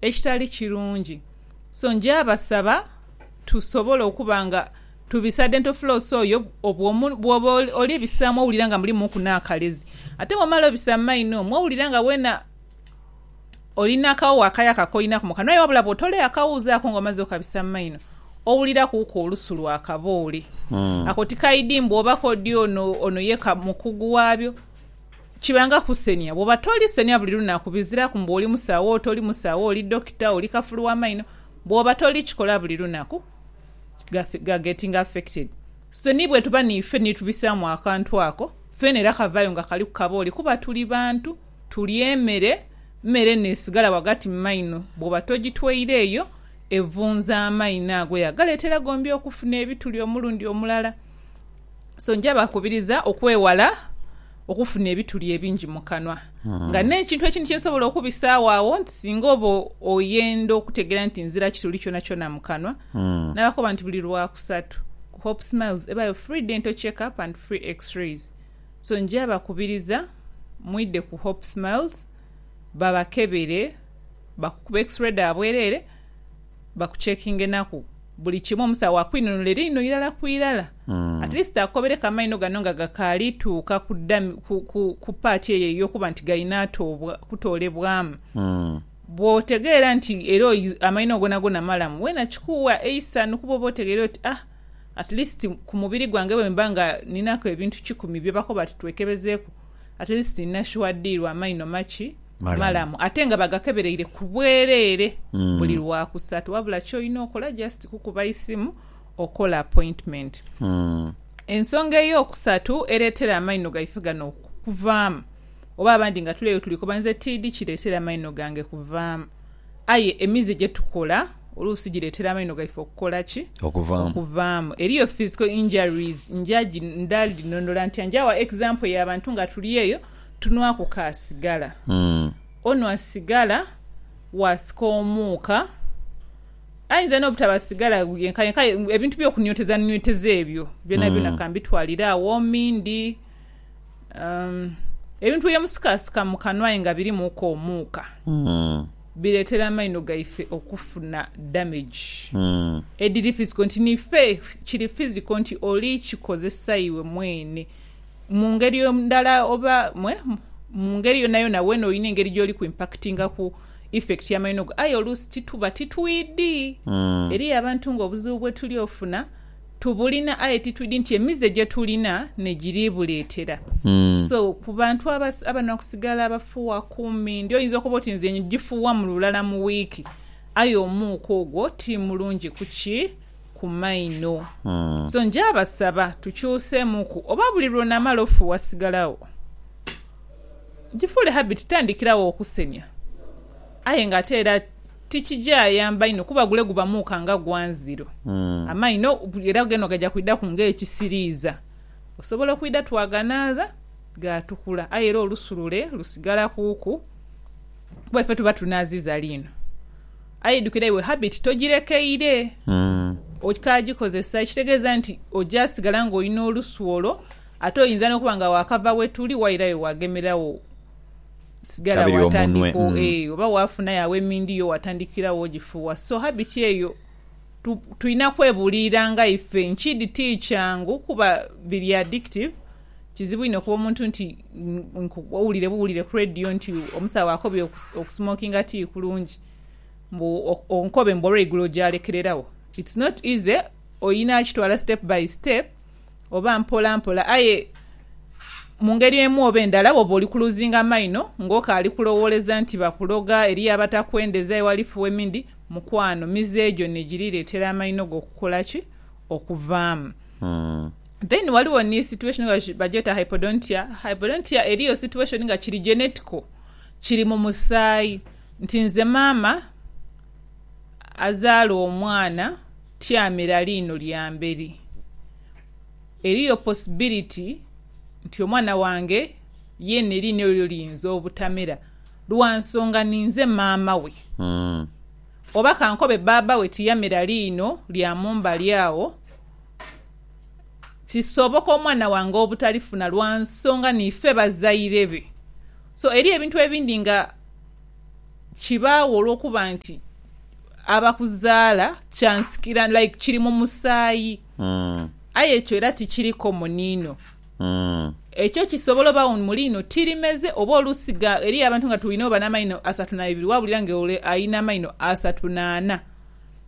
ekitali kirungi. So ngyabasaba tusobole okuba nga tubisa dental floss oyo bwomu, bwoba oli bisaamu owulira nga mulimuuku n'akalezi. Ate bw'omala obisa mu maino omwo owulira nga weena oli n'akawowo akayaka koinaku mu kanwa aye wabula bw'otola akawuuzi ako nga omaze okabisa mu maino, owulirakuuku olusu lwa kaboole. Ako tikaidi mbu oba k'odi ono, ono ye mukugu waabyo. Kiba nga kusenia. Bwoba toli senia buli lunaku, biziraku mbu oli musawo, oti oli musawo, oli dokita, oli kafulu wa maino, bwoba toli kikola buli lunaku, ga, ga getting affected. So ni bwetuba niife ni tubisaamu akantu ako, feena era kavaayo nga kaliku kabooli kuba tuli bantu, tulya emere, mere nesigala wagati mu maino, bwoba togitweire eyo, evunza amaino ago yagaleetera gombi okufuna ebituli omulundi omulala. So njabakubiriza okwewala okufuna ebituli ebingi mu kanwa. Hmm. Nga n'ekintu ekindi kye nsobola okubisaagho agho nti singa oba oyenda okutegeera nti nzira kituli kyonakyona mu kanwa, hmm. nabakoba nti buli Lwakusatu ku Hope Smiles ebayo free dental check up and free x-rays. So njabakubiriza mwidhe ku Hope Smiles babakebere, bakukube x-ray dha bwereere, Bakuchekinga enaku buli kimu omusawo akwinunule liino irala ku irala at least akukobere ku amaino gano nga gakaali tuuka ku dami ku ku ku part eyo eyokuba nti galina atoobwa kutoolebwamu bwotegeera nti era oyi amaino gonagona malamu weena kikuuwa eisanhu kuba oba otegeire oti ah at least ku mubiri gwange bwemba nga ninaku ebintu kikumi byebakoba ati twekebezeeku at least nina sure deal amaino maki malamu ate nga bagakebereire ku bwereere buli lwakusatu wabula kyolina okola just kukuba isimu okola appointment. Ensonga eyokusatu ereetera amaino gaife gano okukuvaamu oba abandi nga tuleyo tulikoba nze tiidi kireetera amaino gange kuvaamu. Aye emize gye tukola oluusi gireetera amaino gaife okukola ki? Okuvaamu. Okuvaamu. Eriyo physical injuries. Nja gi, nda dhinhonhola ntya? Nja gha example ya bantu nga tuli eyo, tunhwaku ka sigala. Onhwa sigala, waasika omuuka, aidha n'obutaba sigala yenkayenka, aye ebintu by'okunywetezanyweteza ebyo byonabyona ka mbitwalire agho, mindi. Ebintu byemusikasika mu kanwa aye nga birimuku omuuka biretera amaino gaife okufuna damage ediri physical nti nife kiri physical nti oli kikozesa iwe mwene mungeri ndala oba mungeri yonayona wena olina engeri gyoli ku impactingaku effect ya maino go aye oluusi tituba titwidi. Eriyo abantu nga obuzibu bwetuli ofuna Tubulina aye titwidi nti emize gyetulina negiribuletera so ku bantu abanoa kusigala abafuwa kumi ndi oyinza okoba oti nze njifuwa mu lulala mu wiiki aye omuuka ogwo ti mulungi kuki ku maino so njabasaba tukyusemuku oba buli lwonamala ofuwa sigala wo jifuule habit tandikirawo okusenia aye nga ate era Tikija yamba inho kuba gule guba muuka nga gwa nziro amaino era geno gaja kwidhaku nga ekisiriiza osobola okwidha twaganaaza gaatukula aye era olusu lule lusigala kuuku kuba ife tuba tunaaziiza liino. Aye idhukira iwe habit togirekeire okyagikozesa ekitegeeza nti ojasigala nga olina olusu olwo ate oyinza n'okuba nga waakava we tuli wairayo waagemerera wo. sigala Kabiri omunwe watandika mm. eeh oba wafunayo agho emindi yo watandikira wo ogifuwa so habit eyo tu tulina kwebuliiranga ife nkidi tikyangu kuba biri addictive kizibu inho okuba omuntu nti nku owulire buwulire ku radio nti omusawo akobye oku okusmokinga tikulungi mbu ok onkobe mbu olweigulo ogyalekereragho it's not easy oyina kitwala step by step Oba mpola mpola aye mu ngeri emu oba endala bw'oba oli kuluzinga maino ng'okaali kulowooleza nti bakuloga, eriyo abatakwendeza ewalifu emindi, mukwano, mize egyo n'egiri leetera amaino go okukola ki? Okuvaamu. Then waliwo ni situation nga bagyeta hypodontia. Hypodontia eriyo situation nga kiri genetical, kiri mu musaayi nti nze maama azaala omwana, Tyamira liino lya mberi. Eriyo possibility nti omwana wange yeene liino elyo liyinza obutamera lwa nsonga ninze maama we. Oba kankobe bbaabba we tiyamera liino lya mu mbali agho, kisoboka omwana wange obutalifuna lwa nsonga niife bazaire be. So eriyo ebintu ebindi nga. Kibaagho olw'okuba nti abakuzaala kyansikira, like kiri mu musaayi. Aye ekyo era tikiri common inho. Ekyo kisobola obagho mu liino tirimeze, oba oluusi eriyo abantu nga twinho bano amaino asatu naibiri waawulira nga ole alina amaino asatu naana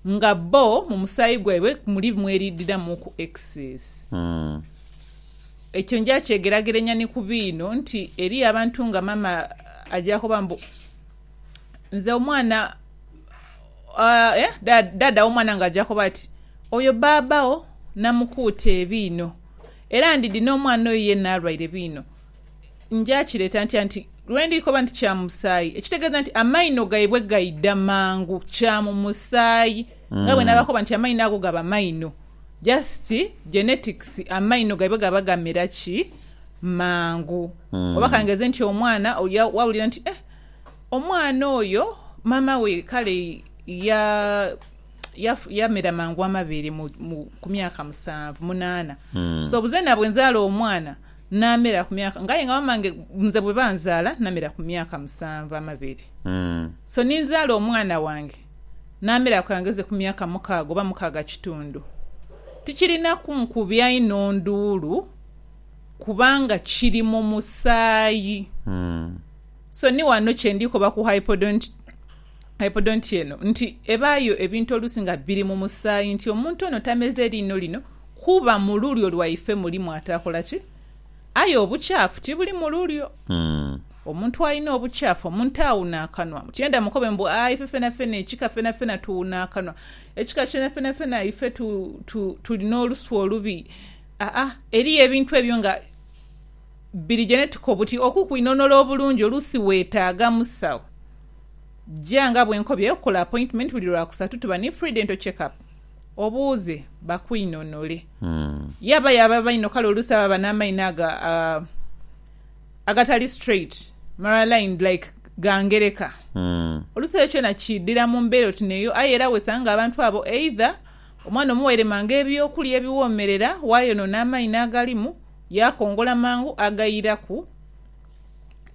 nga bo mu musaayi gwaibwe muli mweriidhiramuuku excess. Ekyo nja kyegerageranya ni ku biino nti eriyo abantu nga mama aja koba mbu, Nze omwana eh, daada w'omwana nga aja koba ati, Oyo baaba wo namukuuta ebiino. Era ndidhi n'omwana oyo yeena alwaire biino. Nja kireeta ntya nti lwe ndi koba nti kya mu musaayi? Ekitegeeza nti amaino gaibwe gaidha mangu, kya mu musaayi. Nga bwe naabakoba nti amaino ago gaba maino. Just genetics amaino gaiba gaba gamera ki mangu mm. Oba kangeze nti omwana wawulira nti eh, omwana oyo mama we kale ya yamera ya mangu amabeere ku myaka musanvu munaana mm. so buze nabwe nzaala omwana namera ku myaka ngaye nga mamange nze bwe banzaala namera ku myaka musanvu amabeere mm. so ninzaala omwana wange naameraku angheze ku myaka mukaaga oba mukaaga kitundu, tikirinaku nkubya inho nduulu kubanga kiri mu musaayi. So ni wano kye ndi koba ku hypodont-hypodontia eno nti ebaayo ebintu oluusi nga biri mu musaayi nti omuntu ono tameze liino lino kuba mu lulyo lwaife mulimu ataakola ki? Aye obukyafu tibuli mu lulyo. Omuntu alina obukyafu, omuntu awuna akanwa. Mukyenda mukobe mbu, Aa, ife fenafena, ekika fenafena tuwuna akanwa. Ekika kyenafenafena ife tu, tu, tuli n'olusu olubi. Aa, eriyo ebintu ebyo nga biri genetiko buti okukwinonola obulungi oluusi weetaaga musawo. Ja nga bwe nkobye okukola apointimenti buli Lwakusatu tuba ni free dental check up. Obuuze bakwinonole. Yaba y'aba amaino kale oluusi aba aba n'amaino ago a, Agatali straight, maralined, like ga ngereka. Oluusi ekyo kyona kiidhira mu mbeera oti n'eyo aye era wesanga nga abantu abo either omwana omuwaire mangu eby'okulya ebiwoomerera waayonoona amaino agalimu yaakongola mangu agairaku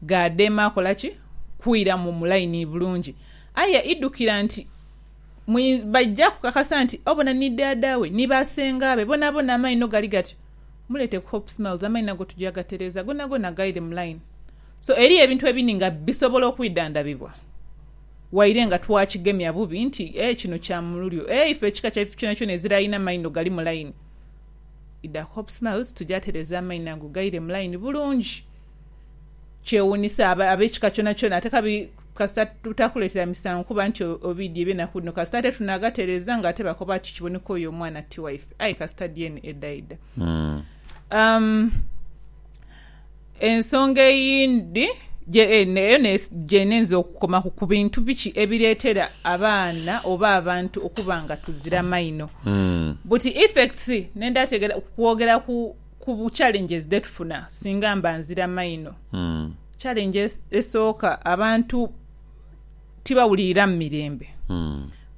gaadheema akola ki? Kwiramu mu line bulungi. Aye idhukira nti baija kukakasa nti obona ni dhaadha we ni basengaabe bonabona amaino gali gatyo. Muleete ku Hope Smiles amaini ago tuja gatereeza gonagona gaire mu line. So eriyo ebintu ebindi nga bisobola okwidhandhabibwa waire nga twakigemya bubi nti ee kino kya mululyo ee ife ekika kyaife kyonakyona ezira alina amaino gali mu line idha ku Hope Smiles tuja tereeza amaino ago gaire mu line bulungi. kyewuunisa aba, ab'ekika kyonakyona, ate kabi kasita tutakuleetera misango kuba nti obiidhi eby'enaku dhino, kasita ate tunaagatereeza ng'ate bakoba ati kiboneka oyo omwana ti waife. Aye kasita dyeni edhaidha. Um, ensonga eyindi gye, eh, ne- eyo nes- gye neenza okukomaku ku bintu biki ebireetera abaana oba abantu okuba nga tuzira maino. Buti effects, nenda tegera kwogera ku Ku bu challenges dhetufuna singa mba nzira maino. Challenge esooka abantu tibawulirira mu mirembe.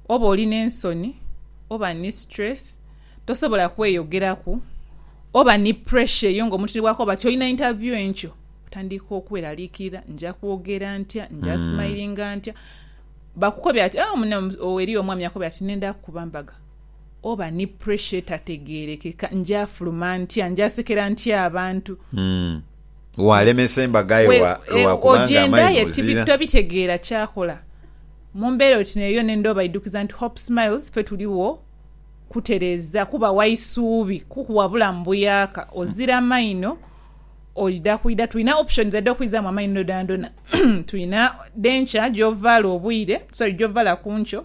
Oba oli n'ensoni, oba ni stress, tosobola kweyogeraku, oba ni pressure eyo ng'omuntu ni bw'akoba ti olina interview enkyo, otandika okweraliikirira, nja kwogera ntya, nja smilinga ntya? Bakukobera ati, oh, munno, eriyo omwami akukobera ati nenda kukuba mbaga. Oba ni pressure etategeerekeka, njaafuluma ntya? Njaasekera ntya abantu? Waalemesa embaga yo lwa kuba nga amaini ozira? Tobitegeera kyakola. Mu mbeera oti n'eyo yona endha obaidhukiza nti Hope Smiles ffe tuligho kutereeza, kubawa isuubi, kukuwa bulamu buyaaka. Ozira maino oidha kwidha, tulina options edho okwizaamu amaino dhoonadhoona. Tulina denture gy'ovaala obwire, sorry gy'ovaala ku nkyo.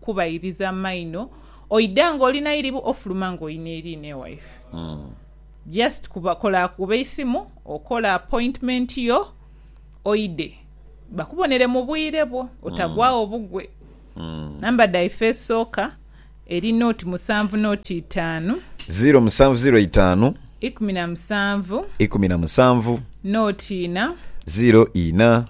kubairiza maino oida nga oli nairibu ofuluma nga oyina eriina ewaife just kuba kola kuba eisimu okole appointment yo oide bakubonere mubwire bwo otagwagho bugwe number dhaife esooka eri nought musanvu nought itaanu. Ziro musanvu ziro itaanu. Ikumi na musanvu. Ikumi na musanvu. Nought ina. Ziro ina.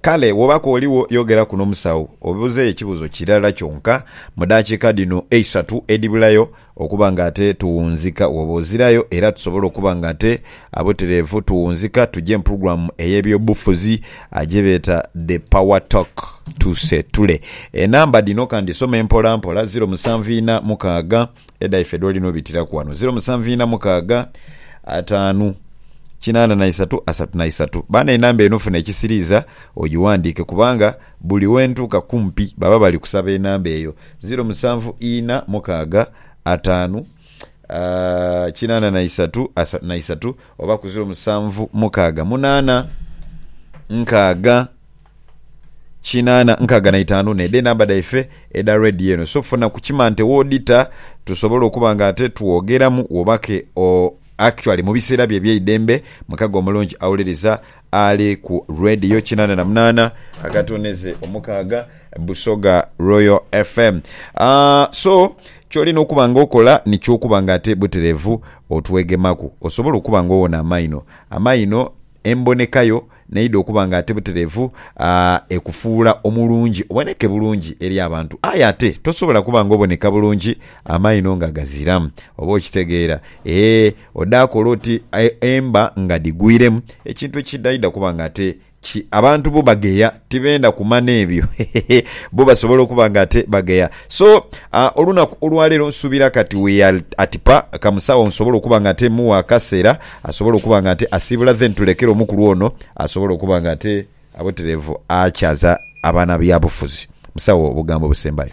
Kale bw'oba k'oligho yogeraku n'omusawo obuuzeeyo ekibuuzo kirala kyonka mu daakiika dhino eisatu edhibulayo okuba ng'ate tuwunzika. Wooba ozirayo era tusobole okuba ng'ate abutereevu tuwunzika tuje mu pulogulaamu ey'ebyobufuzi gye beeta The Power Talk tusetule enamba dhino. Kandhisome mpolampola, ziro musanvu ina mukaaga, Edha ife dwoli nobitiraku wano ziro musanvu ina mukaaga ataanu kinaana na isatu asatu na isatu baana enamba eno funa ekisiriiza ogiwandiike kubanga buli wentuuka kumpi baba bali kusaba enamba eyo ziro musanvu ina mukaaga ataanu kinaana na isatu asatu na isatu Oba ku ziro musanvu mukaaga munaana nkaaga kinaana nkaaga na itaanu ne dhe namba dhaife edha radio eno so funa ku kimante wodita tusobole okuba nga ate twogeramu wobake o actually mu biseera byo ebyeidembe mukago omulungi auliriza Ali ku Radio kinana na munana akatoneze omukaaga Busoga Royal FM. So, ky'olina okuba nga okola nikyo okuba nga ate butereevu otwegemaku. Osobola okuba nga owona amaino. Amaino, emboneka yo n'eidha okuba nga ate butereevu ekufuula omulungi, oboneke bulungi eri abantu. Aye ate tosobola kuba nga oboneka bulungi amaino nga gaziramu. Oba okitegeera? Ee. Odhaakola oti emba nga dhigwiremu ekintu ekiidhaidha kuba nga ate ki? Abantu bo bagheya, tibenda kumana ebyo. Hehehe. Bo basobola okuba nga ate bagheya. So, olunaku olwaleero nsuubira kati we are at pa kamusawo nsobola okuba nga ate mugha akaseera asobole okuba nga ate asiibula then tulekere omukulu ono asobole okuba nga ate abutereevu akyaza abaana byabufuzi. Musawo, obugambo obusembayo?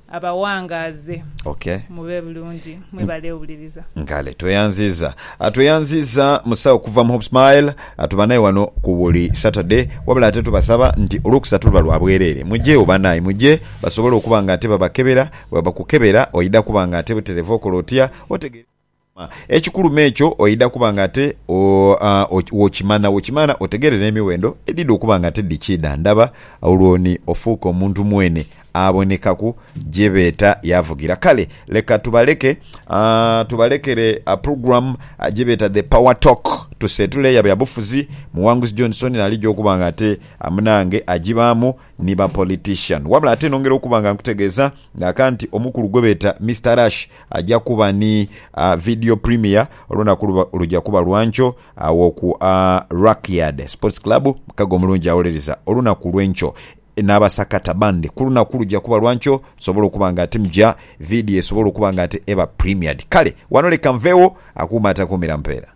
Abawangaaze. Ok. Mube bulungi. Mwebale owuliriza. Nkale. Tweyanziiza. Tweyanziiza musawo okuva mu HopeSmile. Tuba naye wano ku buli Saturday. Wabula ate tubasaba nti Olwokusatu luba lwa bwereere. Mujegho banaye. Muje basobole okuba nga ate babakebera. Bwebakukebera oidha kuba nga ate buterevu okola otya. Otegeera. Ekikulu m'ekyo oidha kuba nga ate w'okimanha, w'okimanha otegeere n'emiwendo edhidha okuba nga ate dhikiidha ndaba, olwo ni ofuuke omuntu mwene abonekaku gye beeta yaavugira. Kale leka tubaleke, tubalekere program gye beeta The Power Talk, tuseetule ya byabufuzi, Muwanguzi Johnson naalija okuba nga ate munange agibaamu ni ba politician. Wabula ate nongera okuba nga nkutegeeza nga ka nti omukulu gwe beeta Mister Rush, Aja kuba ni a video premiere olunaku luba luja kuba lwankyo agho ku a Rackyard Sports Club mukago omulungi awolereza olunaku lwenkyo nabasakata bandi kulunaku luja kuba lwankyo tusobole okuba nga timja video esobole okuba nga eba premiered kale wano leka nvegho akuuma atakuumira mpeera.